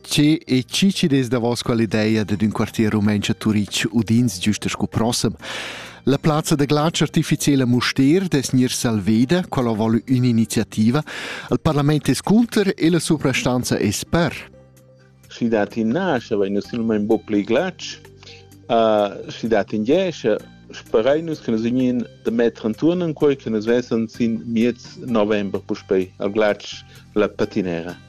Che e chi ci des davos quell'idea dad ün quartier rumentsch a Turitg udins giusta sco prossem? La plazza da glatsch artificiela Mustér des Nier Salveda, quella vole un'iniziativa, al parlament es cunter e la suprastanza es per. Schi dat in nasce, vegn silmain bo plei glatsch, uh, schi dat in jesce, sperei nus che nus vegnin da metter anturn in quei che nus vessen sin miez november puspei al glatsch la patinera.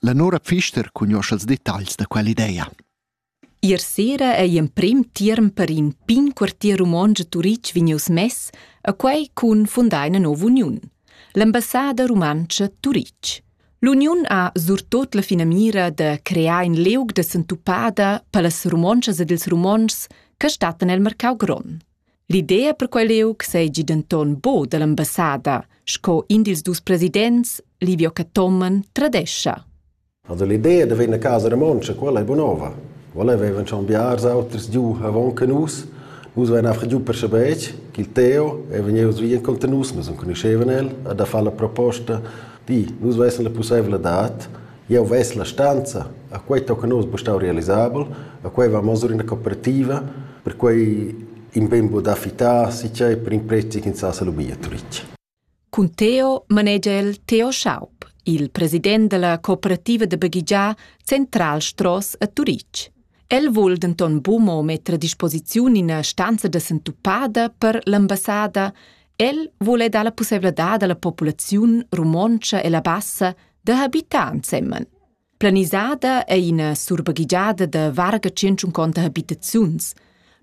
La Nora Pfister cugnuoscha els detagls da quell'idea. Ier sera ei emprim tierm per in pign quartier romontsch a Turitg vegnius mess, a quei cun fundar ina nova uniun, l'ambassada rumantscha Turitg. L'uniun ha surtot la finamira de crear in leug de sentupada per las romontschas ed ils romontschs che stattan el mercau grond. L'idea per quel liug seigi denton buca dall'ambassada, sco in dils dus presidents, Livio Cathomen, tradescha. Also l'idea da venir a casa romontscha, quella è buonova. Quella avevan schon biars auters giù avon che nus. Nus waren einfach giù per Schabeck, qu'il Theo, e venius via incontro nus, nus non conoscevan el, a da fare la proposta di, nus vessem la possibilità Jeu ves la stanza, a quei tocca nus buca realisabel, a quei va masur ina cooperativa, perquei in ben buca fittar si tgei per in prezi ch'ins sa lu bia turitg. Cun Teo manegia el Theo Schaub, il president della cooperativa da baghegiar Central Stross a Turitg. El vul denton bumo metter a disposiziun ina stanza da sentupada per l'ambassada El vul dar la pusseivladad alla populaziun romontscha e la bassa da habitar ensemen. Planisada è ina surbaghigiada da varga 150 habitaziuns,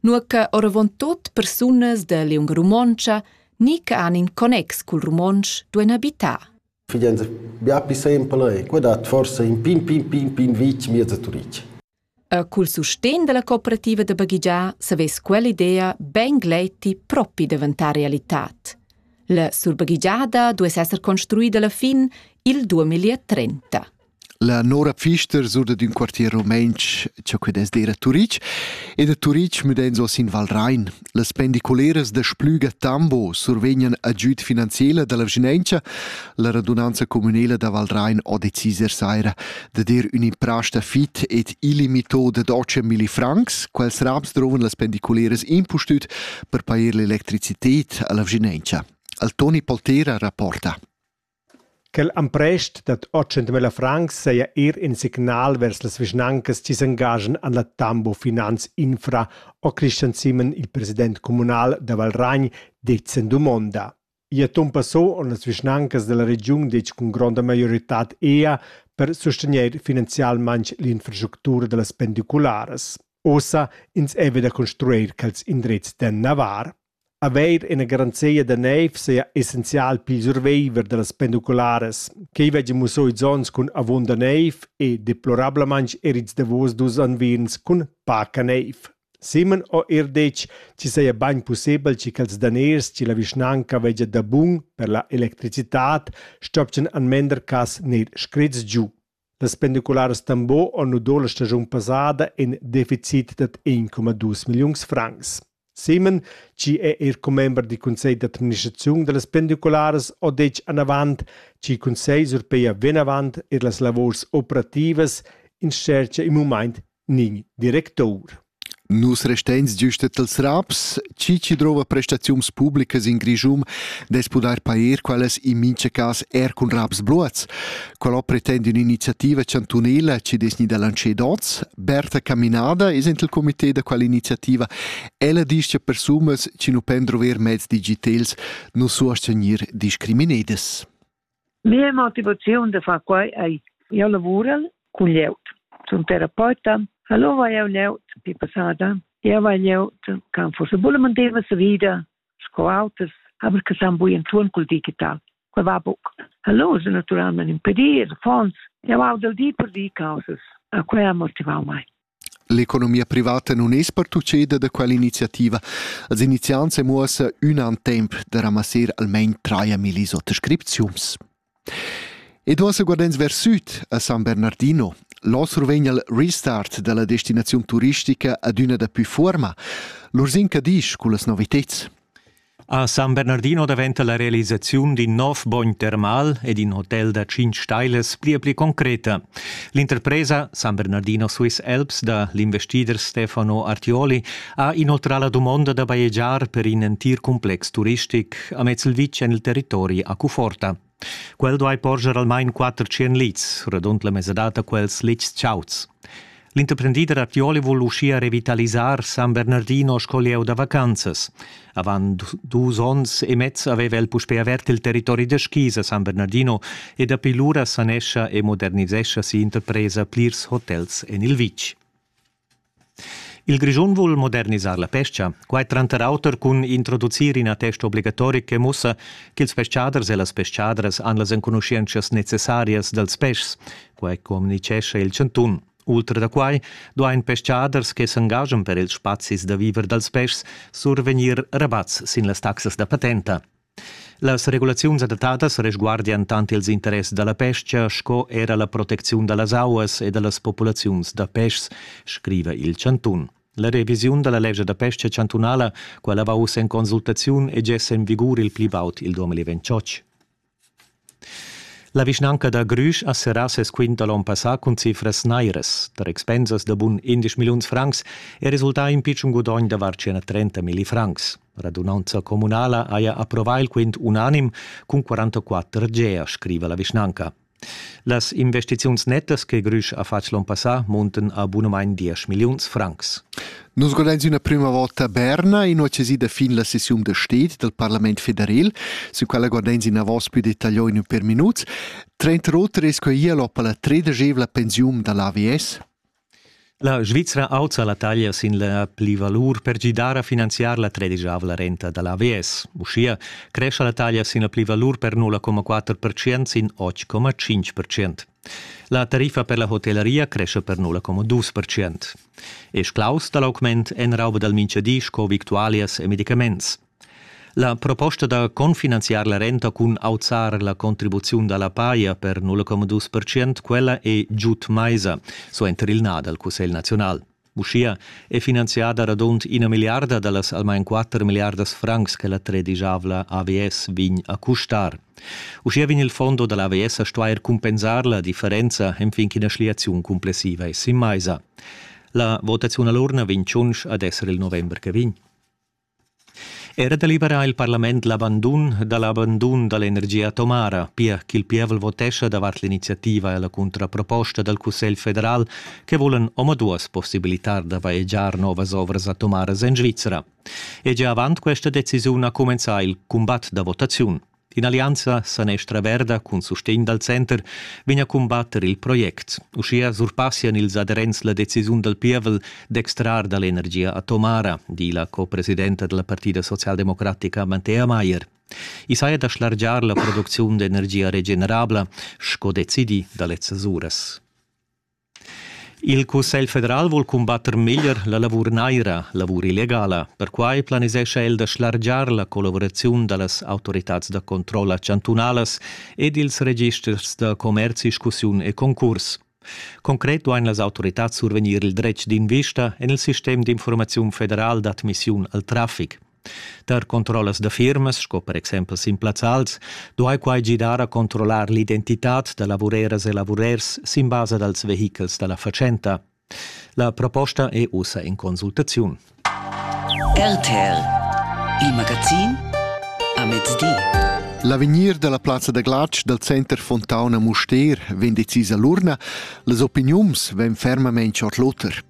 nur che oravontut persunas da liunga romontscha ni che han in connex cul romontsch duein habitar. Figlienza, bia pli sempel è, quei dat forse in pin pin pin pin vitg miez a Turic. Er cul sustegn dalla cooperativa da baghegiar savess quell'idea bein gleiti propi daventar realitad. La surbaghegiada duess esser construida alla fin il 2030. La Nora Pfister surda d'ün quartier romainch, cho que dess dir a Turic, ed a Turic müdains hoz in Val Rain. Las pendiculeras da Splüga Tambo survegnan agüd finanziela da la vschinauncha. La radunanza communela da Valrain ha decis er saira da dir ün'imprasta fit ed illimito da 12 milli francs. Quels raps drovan las pendiculeras impustüt per pair l'electricited a la vschinauncha. Al Toni Poltera rapporta. Quel emprest dad otg milla francs saja eir in signal vers las vischnancas chi s'engaschan en la Tambo Finanz Infra ho Christian Simmen, il president communal da Valragn, dit sin dumonda. I ha ton passò en las vischnancas da la regiun ditg cun gronda maioritad ea per sustegnair finanzialmaing l'infrastructura da las pendicularas. Ossa ins è vi da construir quels indrezs da navar. Haver ina garanzia da niev seigi essenzial pil surviver dallas pendicularas, ch'ei veggi mussau ils onns cun avunda niev e deplorablamein er ils davos dus unvierns cun paca niev. Simon ha era detg ch'i saja bein pussebel che quels daners che la vischnanca veggia dabun per la electricitad stoppien en mender cass gnir screts giu. Las pendicularas Tambo han nudà la stagiun passada in deficit dad 1,2 milliuns francs. Simon, chi è er commember dal cussegl d'administraziun da las pendicularas, ha detg anavant che il cussegl surpeia vinavant er las lavurs operativas in tschercha in mumaint Nin directour. Nus resteins giust els raps, chi chi drova prestaziuns publicas in Grischun dess pudair pair quellas in mincha cas er cun raps bluots. Quella pretende un'iniziativa chantunela chi dess gnida lancer dots. Berta Caminada es int il comité da quella iniziativa. Ella disch cha persunas chi nu pen drover mezs digitels nu suos gnir discriminedas. Mia motivaziun da far quei ei jeu lavurel cun glieud. Sun terapeuta, hallo vai jeu glieud pi passada. Jeu vai glieud che forse vulen mantener sa vida sco auters, aber che san bugen tun col digital. Quei va buc. Hallo se naturalment impedir, fons. Jeu au dal di per di causas. A quei ha motivau mai. L'economia privata nun es pertucheda da quell'iniziativa. As iniziants e muossa ün an temp da ramasser almain traia millis oter scripziuns. E duos guardents vers süd a San Bernardino. L'osro vegn al restart dalla destinaziun turistica ad üna da pü fuorma. L'Ursin Cadisch cullas noviteds. A San Bernardino daventa la realisaziun d'in nov bogn termal ed in hotel da tschintg stailas pli e pli concreta. L'interpresa San Bernardino Swiss Alps da l'investider Stefano Artioli ha inoltrà la dumonda da bajegiar per in entir cumplex turistic amez il vitg en il territori a Cuforta. Quel duai porscher almain quatter tschien lits, radund la mesadad da quels litgs chauds. L'interprendider a Fioli vul uschia revitalisar San Bernardino sco lieu da vacanzas. Avant dus onns e mez aveva el puspè avert il territori da skis a San Bernardino e dapi lura sanescha e modernisescha si'interpresa plirs hotels en il vitg. Il Grischun vul modernisar la pescha, quai tranter auter cun introducir ina testa obligatorica che mussa ch'ils peschaders e las peschadras han las enconuschientschas necessarias dals peschs. Quai communitgescha il chantun. Ultra da quai duain peschaders che s'engaschan per ils spazis da viver dals peschs survegnir rabats sin las taxas da patenta. Las regulaziuns adattadas resguardian tant ils interess da la pestga sco era la protecziun da las auas e da las populaziuns da peschs, scriva il chantun. La revisiun da la lescha da pesca chantunala, quella va uss en consultaziun e gess en vigur il pli baud il 2028. La vischnanca da Grüsch ha serrà ses quint da l'onn passà cun cifras nairas. Tar expensas da bun 11 milliuns francs è resultà in pitschen gudogn da var 130 milli francs. Radunanza communala haja approvà il quint unanim cun 44 gea, scriva la vischnanca. Las investiziuns nettas che Grüsch ha fatg l'onn passà munten a bunamain 10 milliuns francs. Nus godains üna prüma vota a Berna, inüachesida fin la sessiun da sted dal Parlament federal, sü quella godains inavos pü detagliò in ün per minuts. Trenta oter es quai hialop alla tredeschevla pensiun da l'AVS. La Svizra auzza la taglia sin la pli valur per gidar a finanziar la tredisavla renta da l'AVS. Uschia crescha la taglia sin la pli valur per 0,4% sin 8,5%. La tariffa per la hotellaria cresce per nulla como dus percent. E sclaus da l'augment en rauba dal mintgadi sco victualias e medicaments. La proposta da confinanziar la renta cun auzar la contribuziun dalla paia per 0,2%, quella è giud maisa, so enter il na dal Cussegl nazional. Uschia è finanziada radund ina milliarda da las almain quatter milliardas francs che la tredigiavla AVS vegn a custar. Uschia vegn il fondo da l'AVS a stuair cumpensar la differenza enfin ch'ina schliaziun complessiva è sin maisa. La votaziun a l'urna vegn tschunsch ad esser il november che vegn. Era deliberà il parlament l'abandun da l'abandun da l'energia atomara, pia ch'il pievel votescha davart l'iniziativa e la cuntraproposta dal Cussegl federal che vulan omaduas possibilitar da vaegiar novas ovras atomaras en Svizra. E gia avant questa decisiun ha cumenzà il cumbat da votaziun. D'in'allianza sanestra verda cun sustegn dal center vegn a cumbatter il project. Uschia surpassian ils aderents la decisiun dal pievel d'extrar da l'energia atomara, di la co-presidenta della Partida socialdemocratica Mantea Mayer. I saja da schlargiar la producziun d'energia regenerabla, sco decidi da lezzas uras. Il Cussegl federal vul cumbatter meglier la lavur naira, lavur illegala. Perquai planisescha el da schlargiar la collavuraziun da las autoritads da controlla chantunalas ed ils registers da commerzi, discussiun e concurs. Concret duain las autoritads survegnir il dretg d'invista en il sistem d'informaziun federal d'admissiun al traffic. Tar controllas da firmas, sco per exempel sin plazzals, duai quai gidar a controllar l'identitad da lavureras e lavurers sin basa dals vehichels da la fatschenta. La proposta è ussa in consultaziun. RTL, il magazin a mezdi. L'avegnir dalla plazza da glatsch dal center Fontauna Mustér vegn decisa l'urna, las opiniuns vegn fermament chord l'oter.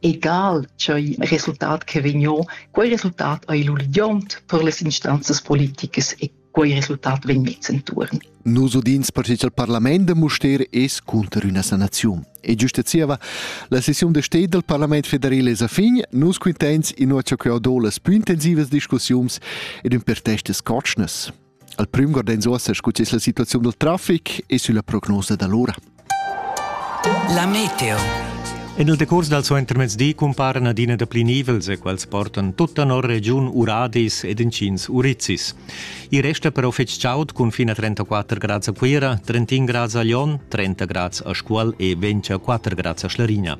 Egal ch'ei resultat che vegniu, quei resultat ei lu ligiont per las instanzas politicas e quei resultat vegn mess entuorn. Nus udins pertgei il parlament da Mustér es cunter üna sanaziun. E giusta zieva, la sessiun da sted del parlament federal es a fin, nus quintens inua cha queu do las plü intensivas discussiuns ed ün per testas cotschnas. Al prüm guard'ins uossa scu es la situaziun dal trafic e sülla prognosa da l'ura. La meteo. En il decurs dal suentermezdi cumparan adina dapli nivels e quels portan tutta nor regiun Uradis ed inschins Urizis. I resta però fitg chaud cun fin a 34 grads a Cuira, 31 grads a Lyon, 30 grads a Scuol e 24 grads a Schlarigna.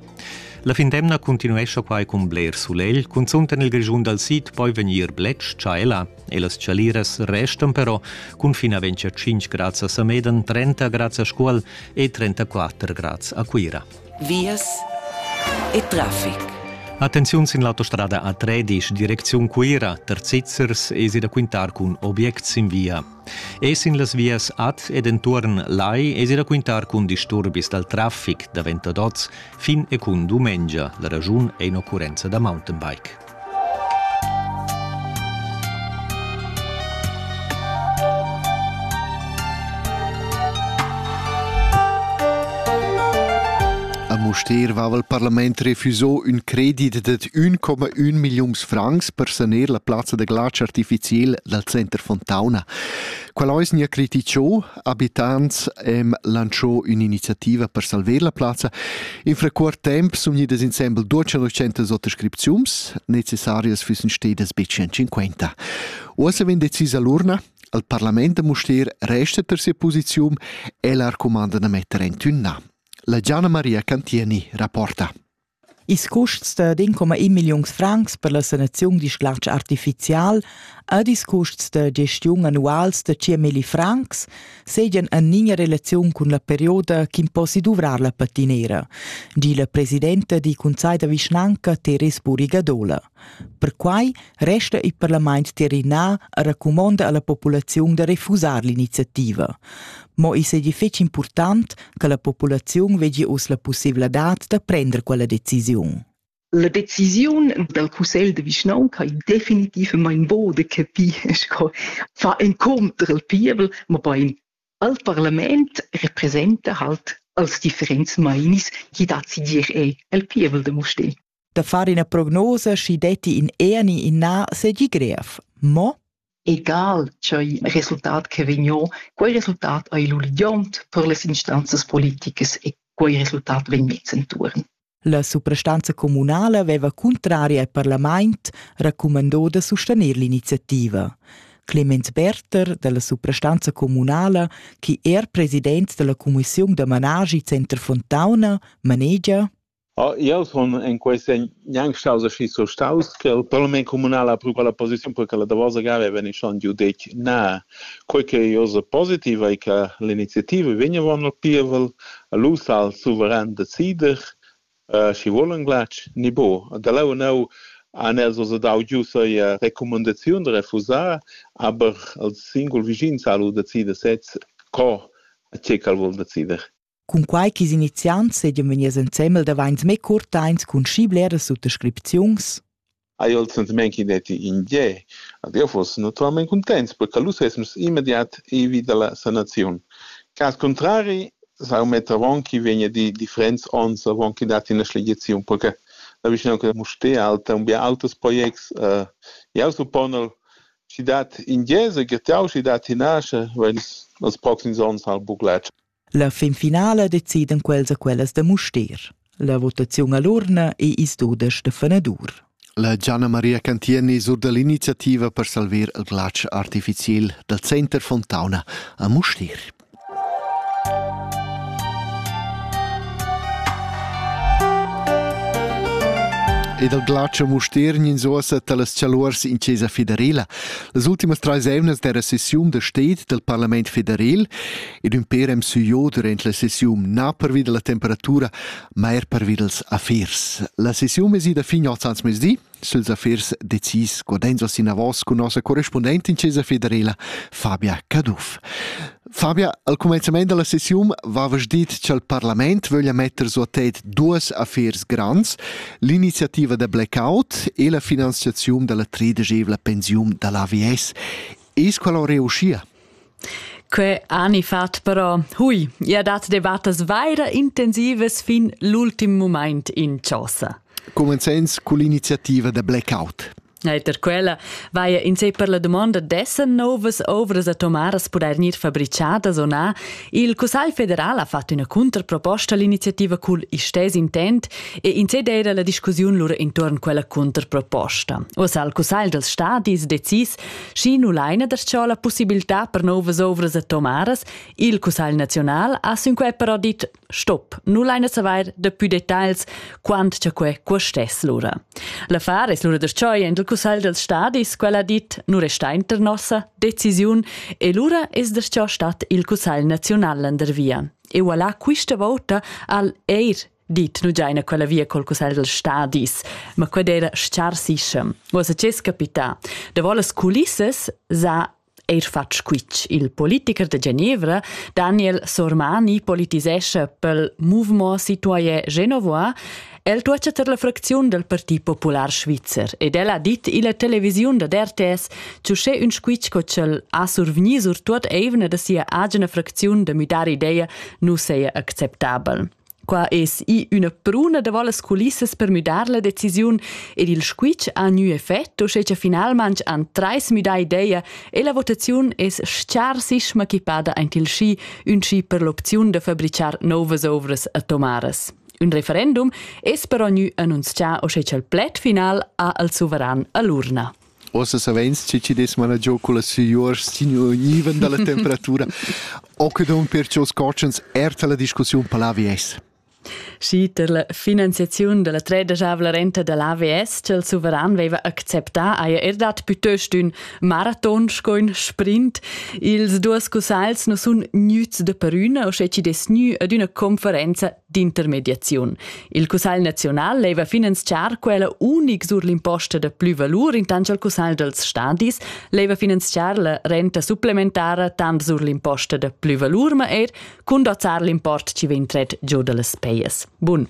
La findemna continuescha quai cun bler sulegl, cunzunt en il Grischun dal sid poi vegnir bletsch tschaela. e las chaliras restan però cun fin a 25 grads a Sameden, 30 grads a Scuol e 34 grads a Cuira. Vias e traffic. Attenziun sin l'autostrada A13, direcziun Cuira, Terzizzers esi da quintar cun objects sin via. E sin las vias ad ed entuorn Lai esi da quintar cun disturbis dal traffic davent ad oz fin e cun dumengia. La ragiun è in occurrenza da mountainbike. Mustér vava il parlament refusò ün credit dad 1,1 milliuns francs per saner la plazza da glatsch artificiel dal center Fontauna. Qual ais nia criticciò, abitants hem lancio ün'iniziativa per salver la plazza. In frecuort temp sun gnidas insembel duos centas oters scripziums necessarias füssen stedas be 150. Uossa vegn decisa l'urna, al parlament da Mustér resta per sia posiziun e l'arcumanda da metter en tünna. La Gianna Maria Cantieni rapporta. Ils custs da 1,1 milliuns francs per la sanaziun da sglatsch artificial ed ils custs da gestiun annuals da 100 milli francs seigien en linea relaziun cun la perioda ch'imposi duvrar la patinera, di la presidenta dil cunsegl da vischnanca Teres Burigadola. Perquai resta il parlament tirrinà a recumonda a la populaziun da refusar l'iniziativa. Mo i seigi fetg impurtant che la populaziun vegli uss la pussevladad da prender quella decisiun. La decisiun dal cussegl de vischnaunca è definitivament bo de capir sco fa incontr il pievel, ma bein al parlament representa halt als differents mainis chi dat si dir ei el pievel de Mustér. da far ina prognosa, schi detti in eni in na segi grev. Mo? egal ch'ei resultat che vegno, quei resultat ei l'uligiont per les instanzas politicas e quei resultat vegn mez entuorn. La suprastanza communala veva contraria al parlament raccumandò da sostener l'iniziativa. Clemens Berter della suprastanza communala, che er president della commissione da managi Center Fontauna, manegia Jau sun en quei senn gnanc staus aschi surstaus che il parlament communal ha pru quella posiziun perche la davosa gara ei vegni schon giu detg na. Quei ch'ei oz positiv ei che l'iniziativa vegn avon il pievel, lu sa il suveran decider schi vul en glatsch ni buc. Da leu enneu han els oz dau giu sia recumandaziun da refusar, aber els singul vischins ha lu decider sez co e tgei ch'el vul decider. Cunquai ch'is iniziants seigien vegnius ensembel davains mê curtains cun schi bleras suttascripziuns. Ai oltre men chi detti in ge. Adriofos naturalmente contents perché lu sesmus immediat ivi dalla sanaziun. Cas contrari sau metter avon chi vegna di differents onns avon chi dat ina schlegiziun perché la vischnaunca da Mustér alta un bia auters projects uh, jau supponel chi dat in gese getau chi dat in asche weil els proxims onns al buclatsch La finfinala decidan quels a quellas da Mustér. La votaziun all'urna è ils dudesch da fenadur. La Gianna Maria Cantieni sur dall'iniziativa per salvar il glatsch artificial dal Center Fontauna a Mustér. Ed il glatsch a Mustér gnanzosa talas chaluors in Chesa federela. Las ultimas trais emnas dera sessiun da sted del Parlament federal ed ün per em süiò durant la sessiun na pervi da la temperatura, ma er pervi dals affers. La sessiun es ida fin oz ans mezdi. Suls affers decis guardenzos inavos cun nossa correspundentin Cesa Federela, Fabia Caduff. Fabia, al comenzament della sessiun vavas dit cha'l parlament vöglia metter su a tête duas affers grands, l'iniziativa da blackout e la finanziaziun della tredegevla pensiun dall'AVS. Es quella reuscia? Que ani fat però, hui, ia dat debattas vaira intensivas fin l'ultim mumaint in chosa. Comenzens con l'iniziativa da Blackout. Eiter quella vaia in sé per la domanda dessen novas ovras atomaras pudair gnir fabricadas o na. Il Cussagl federal ha fatto üna contraproposta all'iniziativa cul istess intent e in sé d'eira la discussiun lura intuorn quella contraproposta. Uossa il Cussagl dals stadis decis Schi nu laina da sciò la pussibiltà per nouvas ovras atomaras, il Cussagl naziunal ha sün quai però dit stop, nu laina savair da pü detagls quant cha quai custess lura. L'affar es lura da scioi aint il Cussagl dals stadis, quel ha dit nu resta inter nossa decisiun e lura es da sciò stat il Cussagl naziunal landervia. E voilà quista vouta al eir dit nu giaina quella via col cussagl dals stadis, ma qued era schar sischem. Uossa c'es capità. Davo las culissas s'ha eir fatg squitsch. Il politiker de Genevra, Daniel Sormani, politisescha pel Mouvement Citoyen Genevois El tuocha ter la fracziun dal Parti Popular Svizzer ed el ha dit illa televisiun da RTS che uschè ün squitsch co ch'el ha survgni sur tuot eivna da sia agina fracziun da müdar ideia nu seja acceptabel. Qua es i üna pruna da las culissas per müdar la decisiun ed il squitsch ha gnü effet, uschè cha finalmaing han trais müdà ideia e la votaziun es scharsissima equipada aint il schi, ün schi per l'opziun da fabrichar nouvas ouvras atomaras. Un referendum es però gnü annunzià uschè cha'l pled final ha al suveran a l'urna. Ossa savens che chi dess managiò culla sigliuors stignuivan dalla temperatura. Occidon perciò scotschens erta la discussiun per l'AVS. Schi tar la finanziaziun dalla tredasavla renta da l'AVS ch'el suveran veva acceptà haja er dat plütöst ün maraton sco ün sprint. Ils duos cussagls nu sun gnüts da perüna, o sche chi dess gnü ad üna conferenza d'intermediaziun. Il Cussegl naziunal leva finanziar quella unic sur l'imposta da plü valur intant al Cussegl dals stadis, leva finanziar la renta supplementara tant sur l'imposta da plü valur ma eir cun dozzar l'import chi vegn tret giù da las pejas. Bun.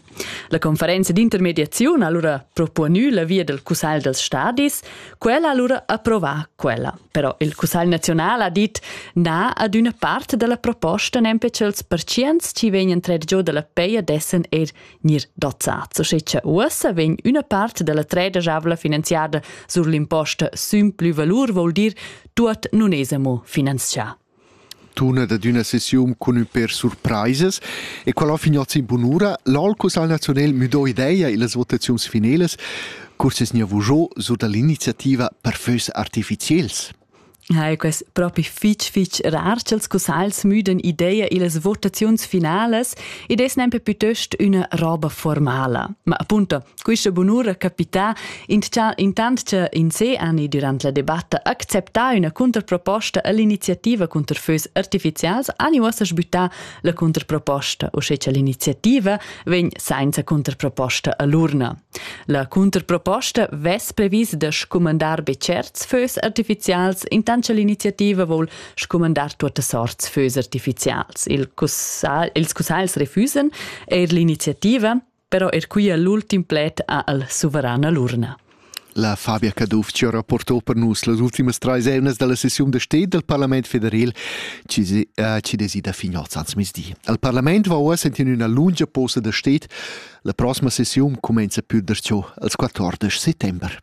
La conferenza d'intermediaziun ha allura proponü la via del Cussegl dals stadis, quella ha allura approvà quella. Però il Cussagl naziunal ha dit na ad üna part da la proposta nempe ch'els pertschients chi vegnan trer giò da la peia dessan eir gnir dozzats. Sche cha uossa vegn üna part da la treda javla finanziada sur l'imposta sün plü valur, voul dir tuot nun es amo finanzià. Tunet ad üna sessiun cun ün per surpraisas e quel ho finiot sin bunura. L'Olcus al Nazionel müdò ideia illas votaziuns finelas, cur s'es gnieu vujo sur da l'iniziativa per fös artificiels. Ja, que es propi fich fich rar cha'ls cussagls müdan ideia illas votaziuns finalas ed es nempe pütöst üna roba formala. Ma appunto, Quista bunura capità intcha intant cha in se ani durant la debatta acceptà üna contraproposta all'iniziativa cunter fös artificials ani uossa sbüttà la contraproposta, uschè cha l'iniziativa vegn sainza contraproposta a l'urna. La contraproposta vess previs da scumandar be tscherts fös artificials intant cha l'iniziativa voul scumandar tuottas sorts fös artificials. Il cussagl, ils cussagls refüsan eir l'iniziativa però er quia l'ultim pled ha al suverana l'urna. La Fabia Cadufci ha rapportò per nus las ultimas trais eunas dalla sessiun da sted del Parlament federal ci desi da Finoz ans misdi. Al Parlament va uossa in üna lunga posa da sted. La prossima sessiun comenza più der ciò als 14 settember.